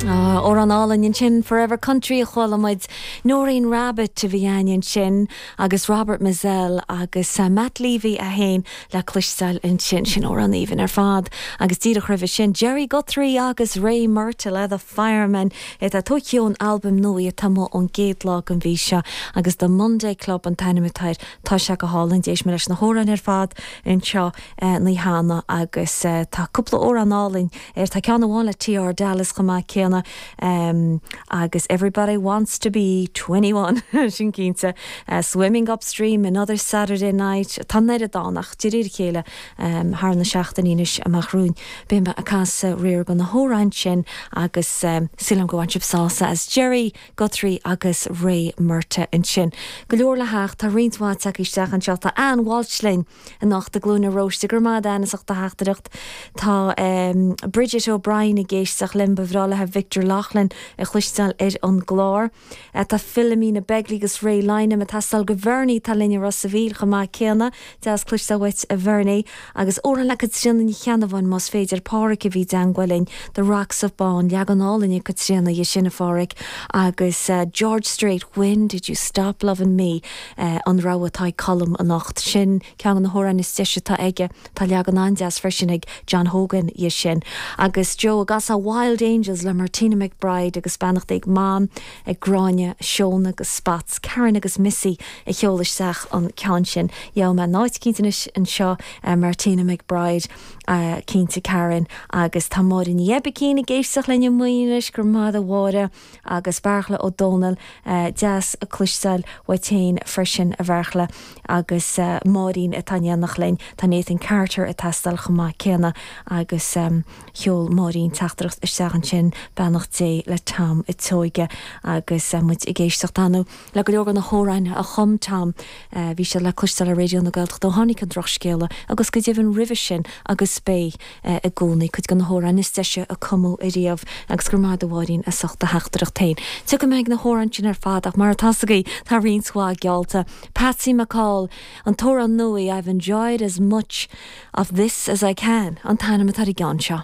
Ah, amhrán álainn ansin, Forever Country a chuala muid. Noreen Rabbitte a bhí againn ansin agus Robert Mizzell agus Matt Leavy ann le cloisteáil ansin. Sin amhrán aoibhinn ar fad. Agus díreach roimhe sin, Gerry Guthrie agus Ray Murtagh, The Fireman, é atá tógtha ón albam nua atá amuigh ón gcéad lá den mhí seo agus The Monday Club an t-ainm atá air. Tá sé go hálainn. D'éist mé leis na hamhráin ar fad anseo naí cheana agus tá cúpla amhrán álainn air. Tá ceann amháin le TR Dallas chomh maith céanna agus everybody wants to be twenty one, sin cinnte. Swimming Upstream, Another Saturday Night, tá an oiread ann ach de réir a chéile thar na seachtainí anois amach romhainn beidh mé ag casadh riar de na hamhráin sin agus sílim go mbainfidh sibh sásamh as Gerry Guthrie agus Ray Murtagh ansin. Go leor le theacht, tá roinnt mhaith tagtha isteach anseo, tá Ann Walsh linn anocht i nGleann an Róistigh, go raibh maith agat Dennis as do theachtaireacht, tá Bridget O'Brien ag éisteacht linn ba bhreá léithe Victor Loughlin a chloisteáil ar an gclár. Tá Philomena Begley agus Ray Lynam ag teastáil ó Bhernie, tá linn i Ros a' Mhíl chomh maith céanna, deas cloisteáil uait a Bhernie, agus amhrán le Caitríona Ní Cheannabháin más féidir, Páraic a bhí i dteagmháil linn The Rocks of Bawn, leagan álainn ag Caitríona dhe sin a Pháraic, agus George Strait, When did you stop lovin' me? An rogha atá ag Colm anocht, sin ceann de na hamhráin is deise atá aige. Tá leagan an-deas freisin ag John Hogan dhe sin. Agus Joe, an gcasfá Wild Angels le Martina McBride agus beannacht ag Mam, ag Gráinne, Seóna agus Spats, Karen agus Missy a sheol isteach an ceann sin. Gheobhaidh mé áit cinnte anois anseo do Martina McBride cinnte, Karen, agus tá Máire Ní Oibicín ag éisteacht linn i Maínis, go raibh maith a'd a Mháire. agus Beartla Ó Dónaill, deas cloisteáil uait féin freisin, a Bheartla, agus Máirín atá in éineacht linn. Tá Nathan Carter ag teastáil chomh maith céanna, agus sheol Máirín teachtaireacht isteach ansin, beannacht Dé le Tom an tSeoighe, agus muid ag éisteacht inniu. Le go leor de na hamhráin a chum Tom bhí siad le cloisteáil ar Raidió na Gaeltachta ó tháinig an drochscéala agus go deimhin roimhe sin agus beidh i gcónaí, cuid de na hamhráin is deise a cumadh ariamh agus go raibh maith a'd a Mháirín as ucht do theachtaireacht féin. Tiocfaidh muid ar na hamhráin sin ar fad ach mar atá a fhios agaibh tá roinnt mhaith geallta. Patsy McCool, an t-amhrán nua I've enjoyed as much of this as I can an t-ainm atá ar an gceann seo.